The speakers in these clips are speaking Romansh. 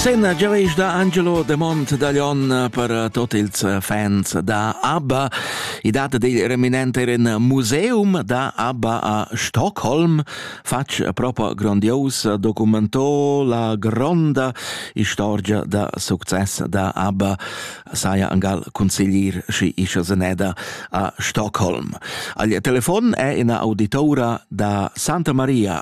Senna giaveisch da Angelo De Mont da Lyon per tot ils fans da ABBA. I data dil reminent er in museum da ABBA a Stockholm. Fatg propo grandios documentò la gronda istorgia da success da ABBA saja angal consiglier schi ischa seneda a Stockholm. Al telefon è ina auditora da Santa Maria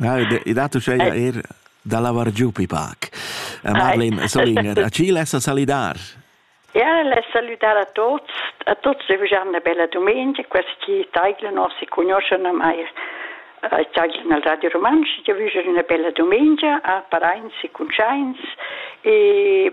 Na, i dat uschè eir da lavar giù pi pac. Marlene Solinger, a chi lessa salidar? Ja, less salüdar a tuots. A tuots e vujan 'na bella dumengia. Quels chi taiglan o si cugnuoschan ormai taiglan al Radio Rumantsch. Io vüja üna bella dumengia a paraints e cuntschaints e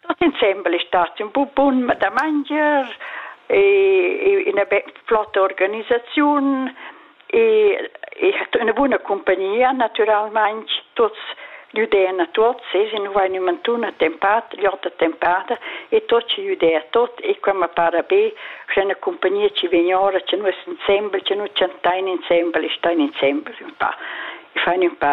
Tutt insembel è stat ün bu bun mat da mangier e üna be flotta organisaziun e e hat üna buna cumpagnia natüralmaing tuots güdain a tuots e se nu vain ün mantun attempat gl'ot attempada e tuot ci güdaia tuot e qua ma para be scha üna cumpagnia chi vegn ora cha nus insembel cha nu chantain insembel e stain insembel ün pa e fain ün pa